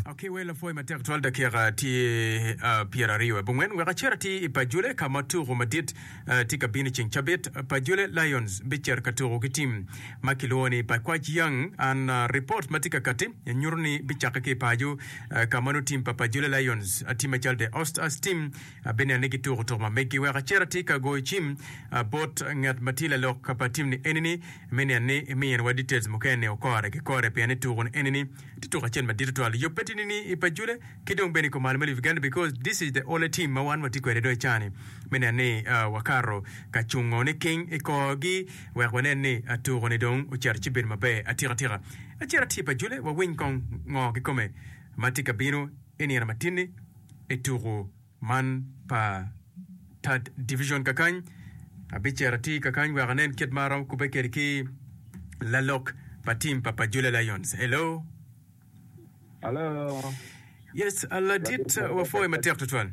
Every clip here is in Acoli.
Akiwe lapwoyi matek twal dakika tye uh, pyera aryo i bungwen wek acer ati i Pajule ka ma tuku madit uh, tye ka bino i ceng cabit. Pajule Lions bicer ka tuku ki tim ma kilwongo ni Pakwach Young. An uh, report ma tye ka kati nyuto ni bicakke ki i paco uh, ka ma nongo tim pa Pajule Lions uh, tye macalo de Ost as tim uh, bineno ni gituku tuku ma meggi. Wek acer ati ka goyo cim uh, bot ngat ma tye lalok pa tim ni eni ni Me niang ni iminiwa details mukene ni okore ki kore pien ituku ni eni ni tye tuku acel madit tutwal yobbe tini ni i pajule ki dong bene i kom al me Uganda because this is the only team ma wan watye kwede dong i caa ni me nen ni wakato ka cungo ni king i kor gi wek wanen ni tuku ni dong ocito ci bedo maber atika tika acito atye pajule wawiny kong ngo kikome matye kabino inino matini ituku man pa Third Division kakany, abicito atir kakany wek anen kit ma aromo kubbe kwede ki lalok pa tim pa Pajula Lions. Hello. Hello. Yes, ladit wapwoyo matek tutwal.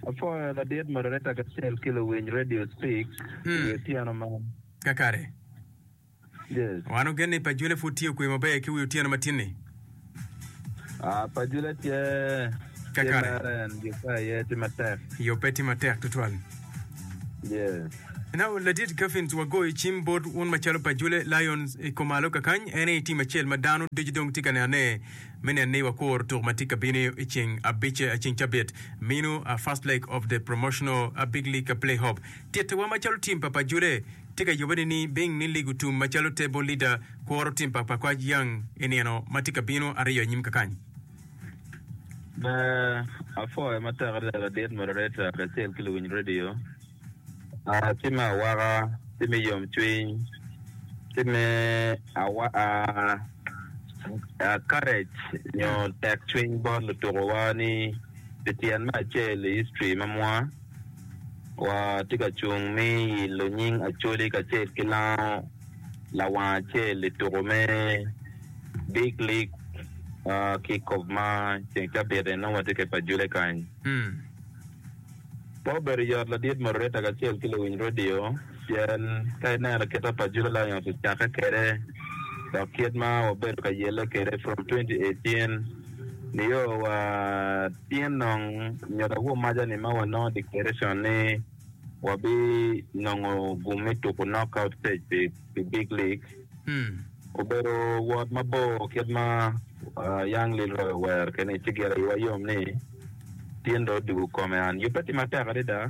Apwoyo ladit moderator kacel ki luwiny Radio Speak hmm. i otyeno man. Kakare. Yes. Wanongo gen ni Pajule pud tye okwe maber ki wi otyeno ma tin-ni. Ah, Pajule tye tye Kakare. mere en yubbe aye tye matek. Yubbe tye matek tutwal. Yes. Now, Ladit Gaffins, wagoyo cim bot wun macalo Pajule Lions i kumalo kakany. En aye i tim acel ma dano ducu dong tye ka nene me neno ni wakuro tuku ma tye ka bino i ceng abic, ceng cabit mino, First leg of the promotional Big League Playoff. Tittiwa macalo tim pa Pajule tye ka yubbe nining? Bing ni ligo tum macalo Table Leader kworo tim pa Pakwaj Young i nino ma tye ka bino aryo anyim kakany. Be apwoyo matek adada ladit moderator kacel ki luwiny radio. Tim me awaka, tim me yomcwiny, tim me courage nyo tekcwiny bot lutukowa ni pi tyen me acel i history ma mwa. Watye ka cung me ilo nying Acholi kacel ki lango lawang acel i tuko me Big League Kickoff ma ceng cabit en nongo watye ka i pa Jule kany. Pe obedo yot ladit moderator kacel ki luwiny redio. Pien ka ineno kita pa Judo Lions ocakke kwede dok kit ma wabedo ka yelle kwede from twenty eighteen nio wa tyen nong nyodo agumaca-ni ma wanongo declaration ni wabi nongo gum me tuku knockout stage pi pi big league obedo wot mabor kit ma Young Leroy owero kwede-ni ci gire iwa yom ni tyen dong odwogo kome an yubbe tye matek adada.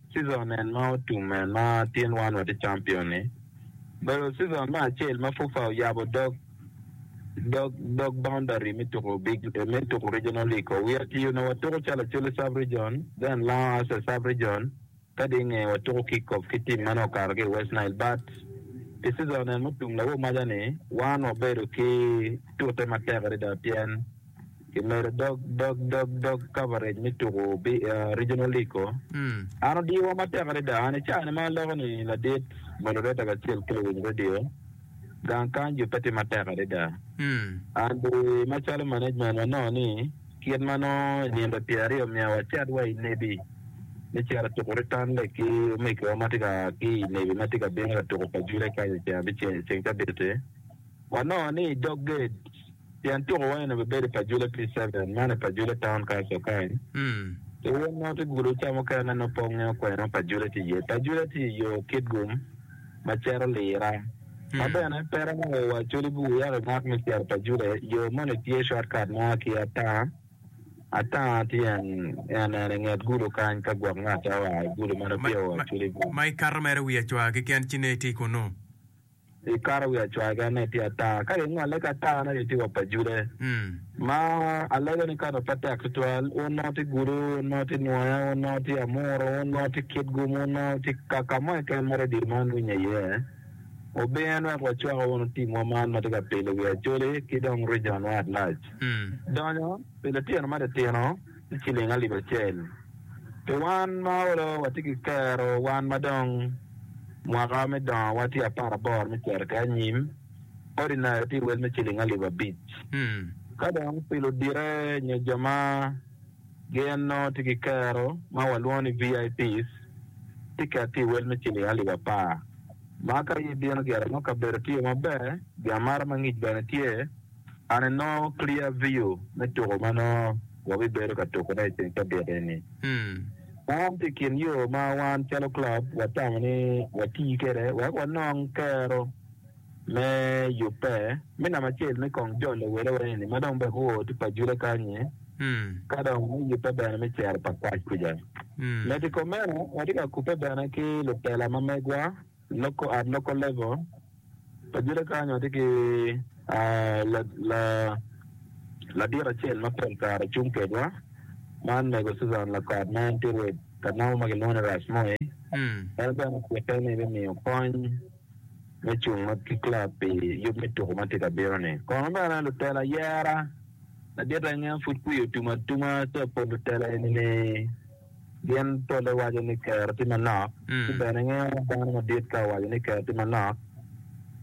Season en ma otum en ma tin wan watye champion ni obedo season me acel ma FUFA oyabo dog dog dog boundary me tuku big me tuku regional league o. WRTU onongo watuku calo Acholi sub region, then Lango as a sub region kadi inge watuku kick off ki team ma nongo okato ki i West Nile but pi season en mutum lawomaja ni wan wabedo ki tute matek adada pien Kimedo dog dog dog dog coverage me tuku Regional League ko. An odiyowa matek adada. An icani ma aloko ni ladit moderator kacel ki luwiny radio, gang kany jo pe tye matek adada. An bene macalo management wanongo ni kit ma nongo i nino pyera aryo omiyo wacit wa i Nebi me cito tuku Return Leg ki omegiwa ma tye ka ki i Nebi ma tye ka bino ka tuku pa Jure kany i ceng abicel ceng te abiti. Wanongo ni i dog gate tyen tuko wa eno bibedo i Pajule P-seven, man i Pajule Town Council kany. Ki wun ma wutye gudo ca mukene nongo pe wungeyo kwene Pajule tye iye. Pajule tye i yo Kitgum ma cito Lira. Ka bene pe romo woko wa Acholi Bur wek imak me cito Pajule, yo moni tye shortcut mo ma ki Atanga, Atanga tye en en en i nget gudo kany ka gwok ngat a oa i gudo ma nipye o Acholi Bur. Ma ikato mere wiye cwar keken ci nongo itye kunnu. Gikato wi acwaga ne tye ata, ka gingole ki ata ne gitye wa pa Jude. Ma alego ni kado pe tek tutwal, wun nongo tye gudo, wun nongo tye nwoya, wun nongo tye amuru, wun nongo tye kitgum, wun nongo tye kaka mo keken ma redio man winye iye. Wubin wek wacwak wunu timwa man ma tye ka pilo wi Acholi ki dong rijon-wa lac. Donyo pi litino ma titino. ki cilling alip acel. Pi wan ma olo watye ki kero wan ma dong mwaka me dongo wa tye apar aboro me cito ki anyim, ordinary tye wel me cilling alip abic. Ka dong pi ludite nyo jo ma gin nongo tye ki kero ma wa lwongo ni VIPs, tiket tye wel me cilling alip apar. Ma ka ibino gire mo kabedo tye maber, giamara ma ngic bene tye. An i nongo clear view me tuko ma nongo wabibedo ka tukone i ceng te dito eni. Man tye i kin yo ma wan calo club watamo ni wati kwede wek wanong kero me yubbe me namba acel me kong jol lawele wa eni ma dong bene oo tung pa Jule kany-nyi ka dong me yubbe bene me cero pa kwac kuca. Medo i kom meno watye ka kubbe bene ki lutela ma megwa. Loko ot loko level pa jule kany watye ki ladit acel ma pol kare cung kedwa man mego Susan Lakot ma en tye rwed ka namo ma kilwongo ni Ras Moi en bene ocike ni bimiyo kony me cung ki club pi yub me tuko ma tye ka bino ni kono bene lutelo ayera ladit enge pud kwiyo otum atuma ca pol lutelo eni ni Gin polle waco ni kero tye manok, ci bene ingeyo ni dano madit ka owaco ni kero tye manok,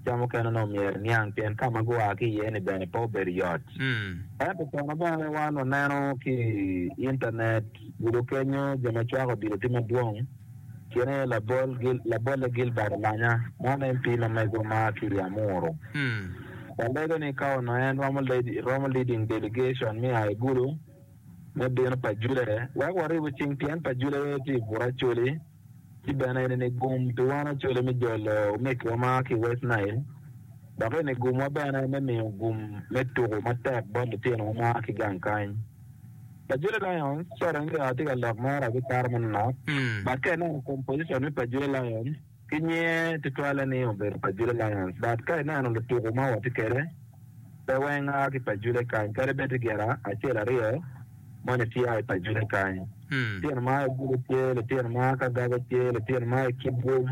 ca mukene onongo myero iniang pien ka ma gua ki iye-ni bene pe obedo yot. Ento kono bene wan waneno ki i intanet, gudo kenyo jo ma cwako odilo tye madwong, gin aye labol, labolle Gilbert Olanya, ma en MP ma mego ma a ki i Amuru. Walego ni ka onongo en romo leading delegation me a i gudo, me bino pa Juda aye wek waribu cing pien pa Juda aye tye i Buracoli ci bene en ini gum pi wan Acoli me jolo omeggiwa ma ki i West Nile dok ini gumwa bene me miyo gum me tuku matek bot litinowa ma a ki gang kany. Pa Juda Lions, sorry, nge-wa tye ka lok mere abiparo manonok, but ka ineno composition me pa Juda Lions, ki nyinge tutwalle ni obedo pa Jule Langas but ka ineno lutuku ma watye kede pe weng aa ki pa Jule kany kadi bed tye gin acel aryo moni tye aa i pa Jule kany litino ma aa i Jule tye litino ma aa ki Agaba tye litino ma aa i Kibwom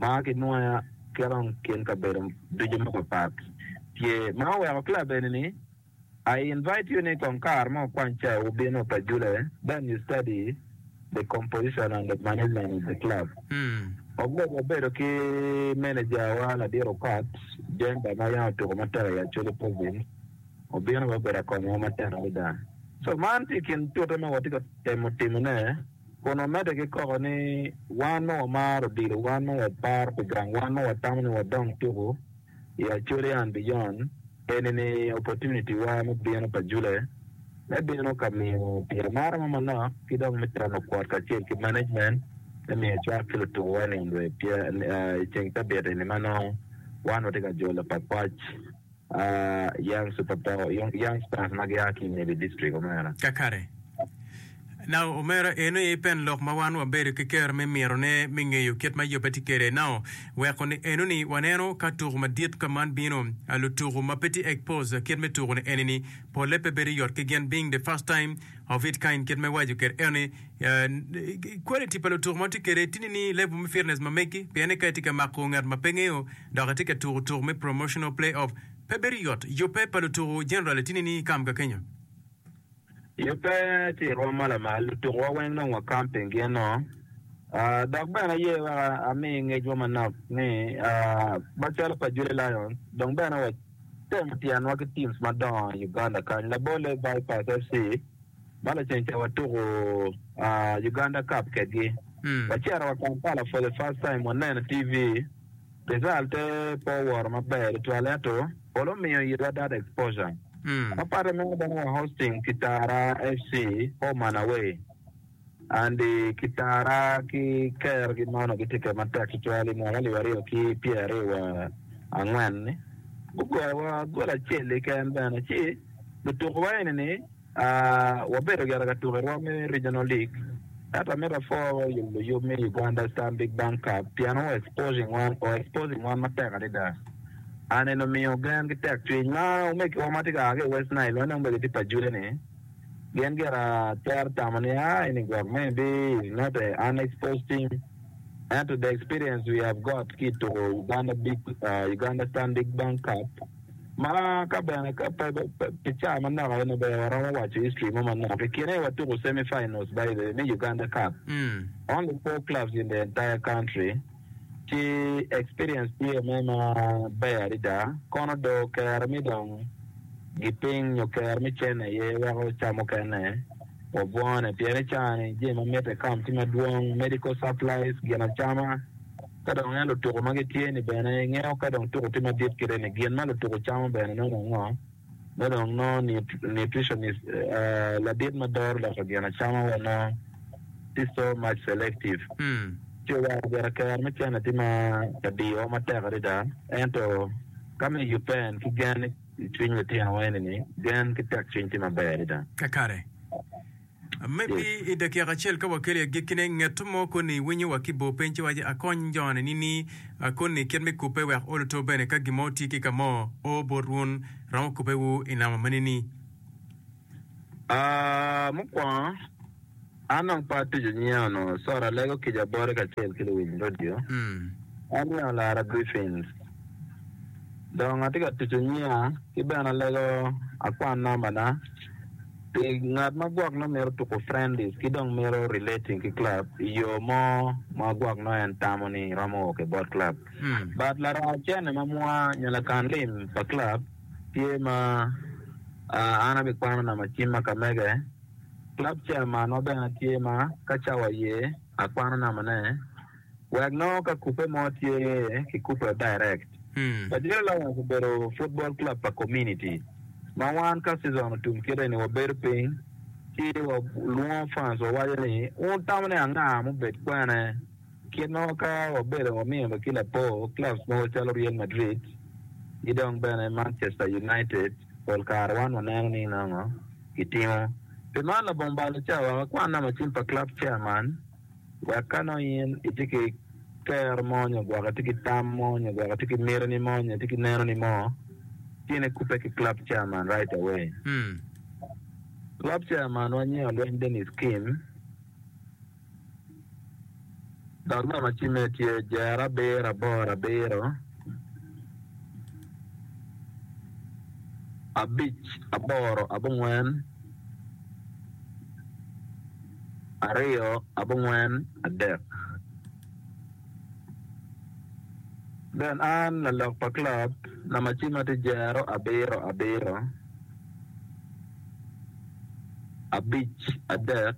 ma aa ki Nwoya ki dong kin kabedo ducu mapat pat tye ma oweko club eni ni I invite you ni kong kare mo kwany cai wubino pa Jule then you study the composition and the management of the club. Wagurof wabedo ki manager wa ladit okat Jemba ma yam otuko matek i Acholi province obino bene obedo akonyo wa matek adada so man tye i kin tute ma watye ka temo timo ne kun wamedde ki koko ni wan ma wamaro odilo wan ma waparo pi gang wan ma watamo ni wadong tuku i Australia and Beyond, enini opportunity wa me bino pa Jule me bino ka miyo pi amara mo manok ki dong me temo kwot kacel ki management me miyo cwak ki lutuku wa niang rwed pia i ceng cabit eni ma nongo wan watye ka jolo pa kwac Young Super Young Stars ma gia ki i Nibi District Omera. Kakare. Nao omera en aye pen lok ma wan wabedo ki kero me mitone me ngeyo kit ma yubbe tye kede. Nao weko ni eno ni waneno ka tuku madit ka man bino, lutuku ma pe tye expose kit me tuku ni eni ni pole pe bedo yot ki gin being the first time of it kind kit me waco kede eno ni quality pa lutuku ma tye kede tye ni level me fitness ma megi pien ni ka itye ka mako ngat ma pe ngeyo dok itye ka tuku tuku me promotional play off pe bedo yot. Yubbe pa lutuku generally tye ni ni kam ka kenyo. I ope tye i rwom ma lamal, lutukuwa weng dong wa camping gino. Dok bene aye wek ami ngecwa manok ni macalo pa Julie Lions, dong bene wa temo tyenwa ki teams madongo i Uganda kany. Labolle Vipers FC ma lacen ca watuku Uganda Cup kedgi. Wacito wa Kampala for the first time waneno i TV. Rizal pe pe oworo maber tutwal ento pol omiyo itwa data exposure. Ma patte meno bene wa hosting Kitara FC home and away and Kitara ki Ker gi mono gitye kede matek tutwal i mwaka alip aryo ki pyer aryo wa angwen ni gugoyo wa gol acel keken bene ci lutuku wa eni ni Wabedo gire ka tuko i rwom me Regional League ento amito apor luyub me Uganda Stanbic Bank Cup pien o exposing wan matek adada. An en omiyo gen ki tek cwiny ma omegiwa ma tye ka a ki i West Nile ma nongo bene gitye pa jule ni gin gire twero tamo ni a ini gwok me bi is not a un exposed team ento the experience we have got ki i tuko Uganda Stanbic Bank Cup Ma ka bene ka pe pi caa manok aye maber waromo waco history mo manok. I kine watuko semi finals by the way me Uganda Cup. Only four clubs in the entire country ci experience tye me ma ber adada. Kono do kero mi dong giping nyo kero mi cen aye weko caa mukene wabwone pien i caa ni jami ma mitte county madwong, medical supplies, gin acama, Ka dong ineno lutuku ma gitye-ni bene, ingeyo ka dong tuku tye madit kite ni gin ma lutuku camo bene nongo ango. Ma dong nongo nutritionist, ladit ma doro loko gin acama wa nongo tye so much selective. Ci owaco bene kero me cene tye ma ka diyowa matek adada. Ento ka me yupen ki gen i cwiny litinowa eni-ni, gen ki tekcwiny tye maber adada. Kakare. Maybe i dakika acel ka wakelo i agikkine, ngeto mo koni iwinyo wa ki bor piny ci iwaco, Akony jone nini koni kit me kubbe wek oluto bene ka gin mo otye ki ka mo? O, bot wun, romo kubbewu i namo ma nini? Ah, mukwongo, an dong pe atuco nyinga onongo, sorry, alego kica boti kacel ki luwiny radio. An Lino Lara Griffins. Dong atye ka tuco nyinga ki bene alego akwan nambana. Pi ngat ma gwok nongo mito tuko friendlies ki dong mito relating ki club i yo mo ma gwok nongo en tamo ni romo o ki bot club. But laraa cene ma mwa nyo lakan lim pa club tye ma an abikwano nama cim ma ka mege. Club chairman wa bene tye ma ka cawa ye akwano nama ne. wek nongo ka kubbe mo tye kikubbe direct. Lajiro Lions obedo futbol club pa kominiti ma wan ka season otum kite ni wabedo piny ci walwongo fans wawaco ni wun tamo ni anga ma obed kwene kit ma ka wabedo wamiyo bene ki lapor clubs mogo calo Real Madrid ki dong bene Manchester United pol kare wan waneno ni nongo gitimo. Pi man labongo balo ca wek akwanna macin pa club chairman. Wek ka nongo in itye ki kero mo nyo gwok itye ki tam mo nyo gwok itye ki mitini mo nyo itye ki nenoni mo, tin ikubbe ki club chairman right away. Club chairman wa nyinge Olweny Dennis Kim, dok namba cimme tye jero abiro aboro abiro abic aboro abongwen. Aryo abongwen adek. Ben an lalok pa club na macima tye jero abiro abiro abic adek.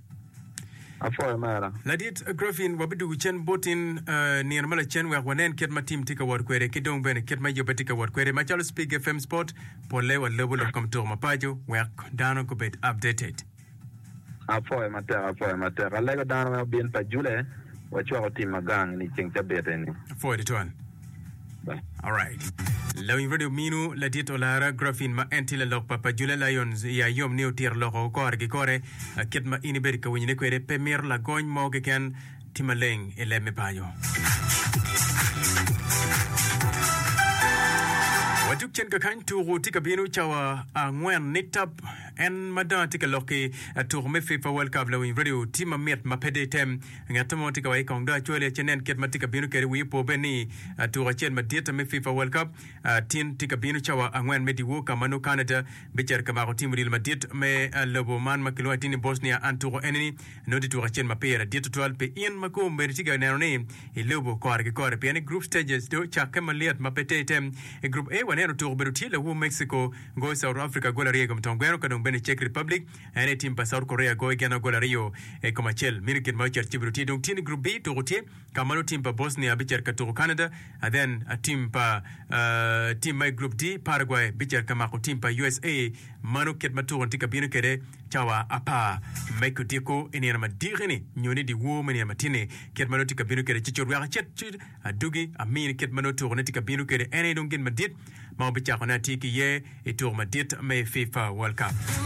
Apwoyo mera. Ladit Griffin, wabidugu cen boti nino ma lacen wek wanen kit ma tim tye ka wot kwede ki dong bene kit ma yubbe tye ka wot kwede. Macalo Spig FM Sport, polle walubo lok kom tuko mapaco wek dano gubed updated. Apwoyo matek, apwoyo matek. Alego dano me obin pa Jule, wacwako tim ma gang ni ceng cabit eni. Apwoyo tutwal. Lawiny redio minu ladit olara Graffin ma en tye lalok pa pa Jula Lions i Ayom ni otito loko kore ki kore kit ma in ibedo ka winyone kwede. Pe mito lagony mo keken. Ti maleng i leb me paco. Wajuk cen kakany tuku tye ka binu cawa angwen ni tap. En ma dong atye ka lok ki tuku me FIFA World Cup lawiny redio ti mamit ma pe de item. Ngat mo tye ka wayi kong dong acwali aye nen kit ma tye ka bino kede wii opo bed ni tuko acel madit me fifa world cup tin tye ka bino cawa angwen me diwor ka ma nongo Canada bicito ka mako tim odilo madit me lobo man ma kilwongo atir ni Bosnia and tuko eni ni nongo tye tuko acel ma pire dit tutwal pi in ma kong omeri tye ka neno ni ilobo kore ki kore pien ni group stages dong ocakke malyet ma pe ter item I group A waneno tuko obedo tye lawu Mexico goyo South Africa gol aryo I kom twon gweno ka dong bene Czech Republic En aye tim pa South Korea goyo gin agol aryo i kom acel. Mini gin ma ocit kibedo tye dong tye ni Group B tuku tye ka malo tim pa Bosnia bicit ka tuku Canada a then a tim pa tim ma i Group D Paraguay bicit ka mako tim pa usa mano kit ma tuku-ni tye ka bino kwede cawa apar me kodiko i nino madiki ni nyo ni dyewor me nino matinni kit ma nongo tye ka bino kwede ci cut wek acit ci adugi amini kit ma nongo tuku-ni tye ka bino kwede en aye dong gin madit ma wabicakone atir ki iye i tuku madit me fifa world cup.